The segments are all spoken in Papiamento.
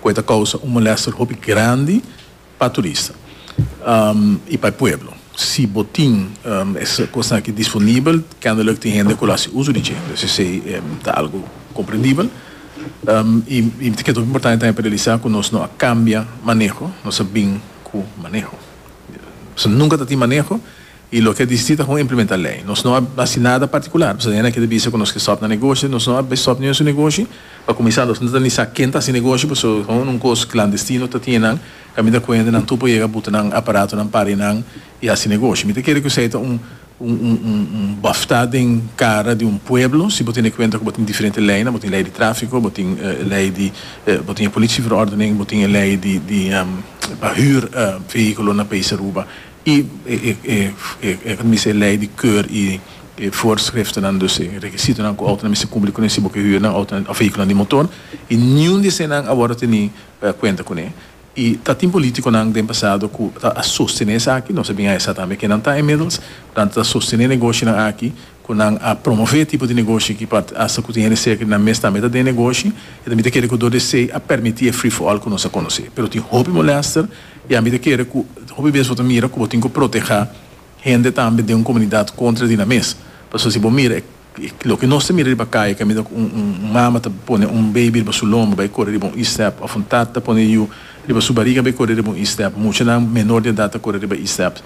ku e ta kousa un molèster hopi grandi pa turista i pa e pueblo. Si bo tin e kosnan aki disponibel, kendelik tin hende ku lo hasi uso di dje, pues esei ta algu komprendibel. I mi ta keda hopi importante tambe pa realisá ku nos no a kambia maneho, nos a bin ku maneho. Nos nunka ta tin maneho I loke a disiti ta kon implementa lei. Nos no a hasi nada partikular. Pasobra hende a kere bisa ku nos ke stòp na negoshi. Nos no a stòp niun su negoshi. Pa kuminsá nos no ta ni sa ken ta hasi negoshi pasobra kon un kos klandestino ta tine nan. Kan mi ta kue hende nan tur por yega buta nan aparatonan para nan i hasi negoshi. Mi ta kere ku esei ta un un bòftá den kara di un pueblo. Si bo tene kuenta ku bo tin diferente leinan, bo tin lei di tráfiko, bo tin e lei di bo tin e polishi verordening, bo tin e lei di di pa hür vehíkulonan país Aruba. I e ta mester lei di keur i e voorschriftennan, dus e rekisitonan ku outonan mester kumpli kuné si bo ke hür nan outonan òf vehíkulonan di motor. I niun di eseinan a wòrdu teni kuenta kuné. I ta tin polítikonan den pasado ku ta a sostené esaki, nos a bin a hesá tambe kenan ta inmiddels, ku ta sostené negoshionan aki. ku nan a promové e tipo di negoshi ki pa hasta ku tin hende serka di nan mes tambe ta den e negoshi, e ta mita kere ku dor di esei a permití e free-for-all ku nos a konosé. Pero tin hopi molèster i a mita kere ku hopi bes bo ta mira ku bo tin ku protehá hende tambe den un komunidat kontra di nan mes. Pasobra si bo mira e loke nos ta mira riba kai kaminda ku un mama ta pone un beibi riba su lomba bai kore riba un istèp òf un tata ta pone yu, Riba su bariga bo e kore riba un e-step. Muchanan menor di edat ta kore riba e-step.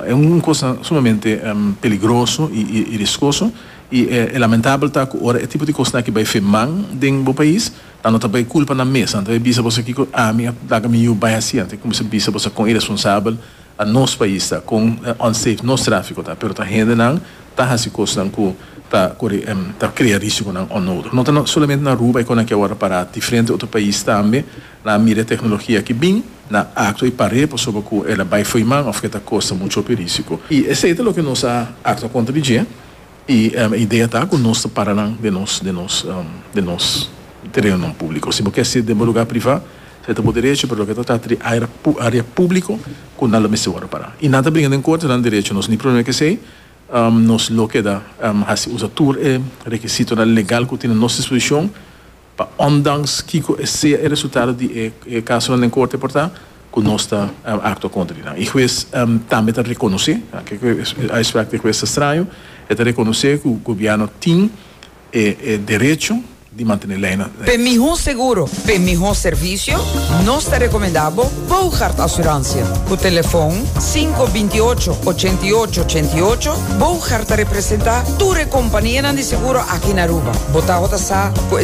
E un kos sumamente peligroso i riskoso. I e lamentabel ta ku ora e tipo di kosnan aki bai firman den bo pais, nan no ta bai kulpa nan mes. Nan ta bai bisa boso kiko ami a laga mi yu bai hasi. Nan ta kuminsá bisa boso kon iresponsabel a nos pais ta, kon unsafe nos tráfiko ta. Pero ta hendenan ta hasi kosnan ku ta kore ta krea risikonan onnodig. No ta solamente na Aruba e kosnan aki awor a pará. Diferente otro pais tambe. Nan a mira e teknologia aki bin, nan a aktua i par'é pasobra ku el a bai foiman òf ku e ta kosta muchu hopi rísiko. I esei ta loke nos a aktua kontra di dje, i e idea ta ku nos ta para nan den nos den nos den nos terenonan públiko. Si bo ke ser den bo lugá privá, se ta bo derecho, pero loke ta trata di área área públiko ku nan lo mester wòrdu pará. I nan ta bringa den korte, nan derecho. Nos nin problema ku esei, nos lo keda hasi usa tur e rekisitonan legal ku tin a nos dispozishon. Pa ondanks kiko e sea e resultado di e casonan den corte por ta, cu nos ta actua contra di nan. E huez tambe ta reconoce, kiko e uitspraak di e huez ta straño, e ta reconoce cu gobierno tin e derecho di mantene leinan. P'e mihó seguro, p'e mihó servicio, nos ta recomenda bo Boogaard Assurantia. Cu telefon sinku binti ocho, ochenta i ocho, ochenta i ocho, Boogaard ta representa tur e companianan di seguro aki na Aruba. Bo tabata sa cu e.